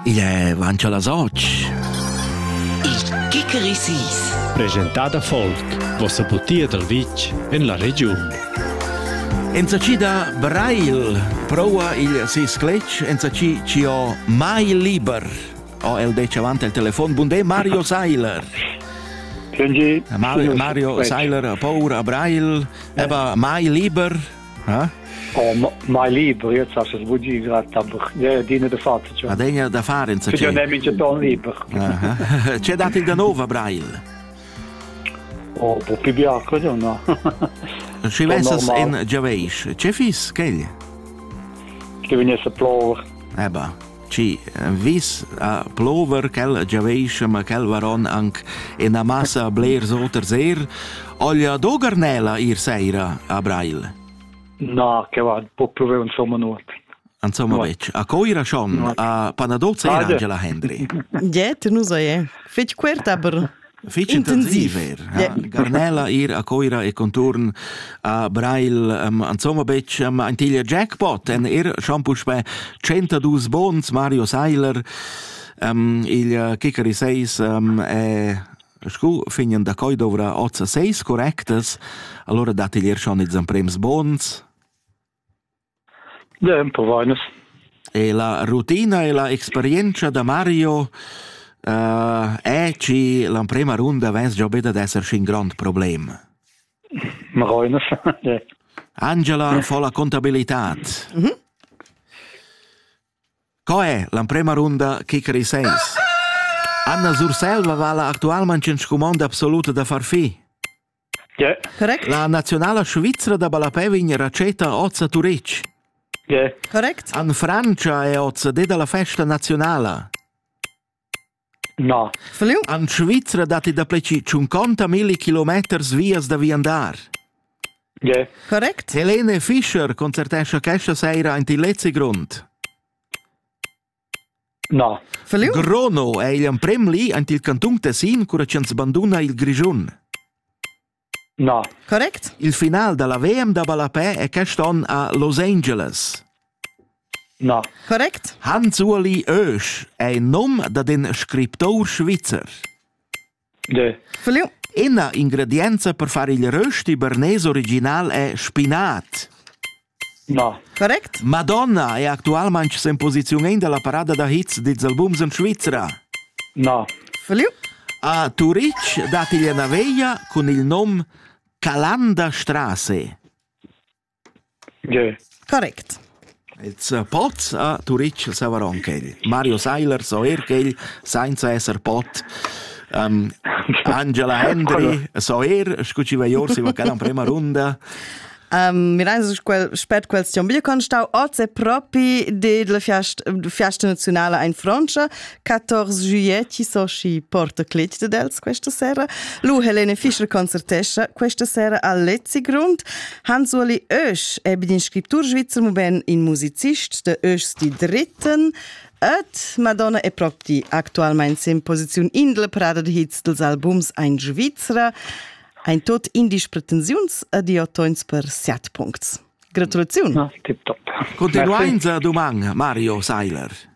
Igl è auncha las otg. Il Kikerisis. Presentada folk, vossa butia dal vitg en la regiun. Enzacida Brail prova il si scletg enzaci ci ho mai liber. O el dece avanti al telefon. Bundé Mario Seiler. Mario, Mario Seiler a paura a Brail, eba mai liber. Eh? Oh, mai libro, io so se vugi grata dine de fatto. Cioè. Ma degna da fare in sa c'è. Ne mi ton libro. C'è dato il da nuova Braille? Oh, po più bianco no. Ci vesas in Giaveis, c'è fis, che? Che venisse plover. Eh bah. Ci vis a plover ch'el giaveischa, ma quel varon anc ina massa blers oters er, oglia dogernela ir seira a Brail. Na, che va, po plover insomma nuot. Insomma, no. vec, a coira schon, no. a panadozza era Angela Hendry. Jet, nu sai, fec quert aber Fich intensiv eir, ha Garnella ir a Coira e conturn a Brail, um, insomma betg um, ein tiglia jackpot, en er schon puspè 102 bons, Mario Seiler, um, il uh, Kikari 6 um, è scu fignen da coi dovrà ozza 6 correctas, allora dat igl er schon ils prems bons. Dä, emprovainas. E la rutina e la experienza da Mario uh, è che l'emprima runda vens già be ad esser un grande problem. Marainas. Angela fa la contabilità. Mm -hmm. Co è l'emprima runda kicker i sens? Anna Zurselva va la actualmente in scumond absoluto da far fi. La naziunala svizra da ballapè vegn retscheta oz a Turitg. Correct. En Frantscha è oz det alla festa naziunala. No. En Svizra datti dapleci 50 milli kilometers vias da viandar. Yeah. Correct. Helene Fischer concertescha questa sera in Tilezzi Grund. Na. Grono ei igl emprem li en il cantun Tessin cura ch'ins banduna il Grischun. Na. Correct. Il final dalla VM da ballapè è quest onn a Los Angeles. Na. Correct. Hans-Uli Oesch è il num dad in scriptor svizzer. Ina ingredienza per far il rösti bernese original è spinat. No. Correct? Madonna è actualmain in posizione della parada da hits dils albums in Svizzera. No. A Turitg dat igl una veglia cun il nom Calanda Strasse. Correct. Ils pots a Turitg saveron quel. Mario Seiler so er quel sainza esser pot. Um, Angela Hendry so er, scu ci va Jorsi va cada prima runda. Um, Mireinsus quel, spet question bio con stau oz è propi de la fiast, fiasta nazionale ein Frontscha 14 juillet ci so sci porta clit de dels questa sera lu Helene Fischer concertescha questa sera a Lezzigrund Hans-Uli Oesch è bin in scriptur svizzer, muben in musicist de Oeschs di dritten et Madonna e Propti actualmein sem posiziun indle prada de hits dels albums ein Svizzera ein tot indisch pretensiuns ed io toins per siat puncts. Gratulaziun. Gratulaziun. Continuainza duman, Mario Seiler.